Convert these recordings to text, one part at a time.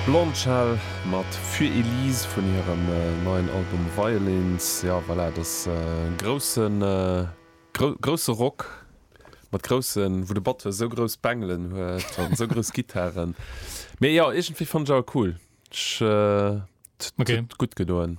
Blondshell mat Für Elise vun hirem neien Album Violins. Jo voilà, et ass grousse, grousse Rock mat groussen, wou de Batteur esou grouss Bengelen huet an esou grouss Gittaren. Mee jo, iergendwéi fannen ech awer cool. Ech, et huet gutt gedoen.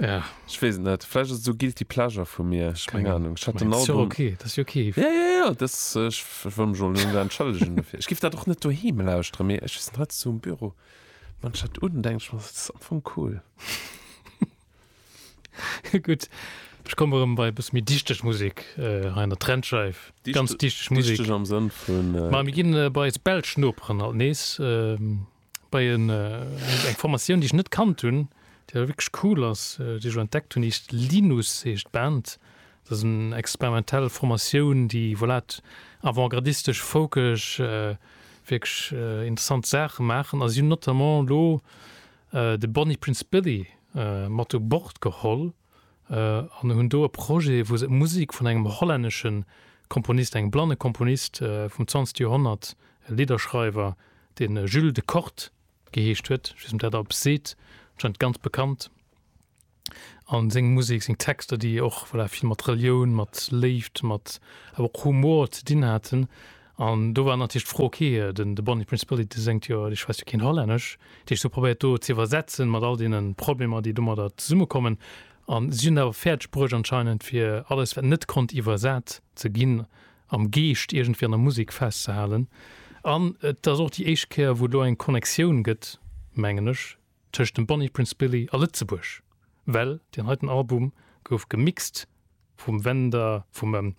Ja. Ech weess et net. Vläicht ass et sou guilty pleasure vu mir. Ech keng Anung. Ech hat den Album. Ass jo ok, dat ass jo ok. Ja, ja, ja, dat ass, ech wëll mech och net entschëllegen dofir. Ech giff dat och net doheem lauschteren, mee ech weess net, haut sou um Büro maachen ech dat un, denken ech mer, dat ass am Fong cool. Gutt, ech komme rëm bei e bësse méi dichteg Musek hei an der Trendscheif. Ganz dichteg Musek. Dichteg am Sënn vun. Ma mir ginn bei eis belsch Noperen alt nees. bei en, äh, eng Formatioun, déi ech net kannt hunn, déi awer wierklech cool ass, äh, déi ech elo entdeckt hunn, heescht Linus, heescht d'Band. Dat ass eng experimentell Formatioun, déi, voilà, et avantgardistesch, folkesch, äh, wierklech, äh, interessant Saache maachen. A si hunn notamment elo, äh, de Bonnie Prince Billy, äh, mat u Bord geholl. an hunn do e Projet, wou se Musek vun engem hollännesche Komponist, engem blanne Komponist vum zwanzegte Joerhonnert, e Lidderschreiwer, dee Jules de Kort geheescht huet, ech weess net, ob dat eppes seet, anscheinend ganz bekannt, a seng Musek, seng Texter, déi och, voilà, vill mat Relioun, mat Léift, mat awer och Humor ze dinn haten. An do war natierlech d'Fro, ok, den de Bonnie Prince Billy, dee séngt jo, dee schwätzt jo keen Hollännesch. Déi ech sou probéiert do ze iwwersetzen, mat all deene Problemer, déi domadder zesummekommen. An si hunn et awer fäerdeg bruecht anscheinend, fir alles, wat net konnt iwwersat ze ginn, am Geescht iergendwéi an der Musek festzehalen. An et ass och déi éischt Kéier, wou et elo eng Connectioun gëtt, mengen ech, tëscht dem Bonnie Prince Billy a Lëtzebuerg, well deen heiten Album gouf gemixt vum Wender, vum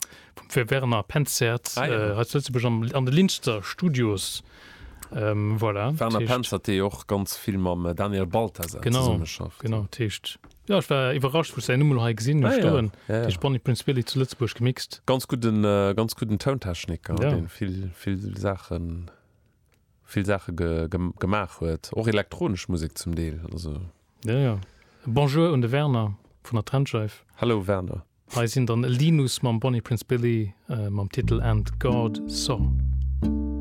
Werner Penzert hei zu Lëtzebuerg an de Linster Studios. Voilà. Werner Penzert, dee jo och ganz vill mam Daniel Balthasar zesummeschafft. Genau, genau. Dat heescht, jo, ech war iwwerrascht, wou ech säin Numm elo hei gesinn hu stoen. Dat heescht Bonnie Prince Billy zu Lëtzebuerg gemixt. Ganz gudden, ganz gudden Tountechniker, dee vill, vill Saachen. vill Saache gemaach huet, och elektronesch Musek zum Deel. Jo, jo. E Bonjour un de Werner vun der Trennscheif. Hallo Werner. Hei sinn dann Linus mam Bonnie Prince Billy mam Titel And God Saw.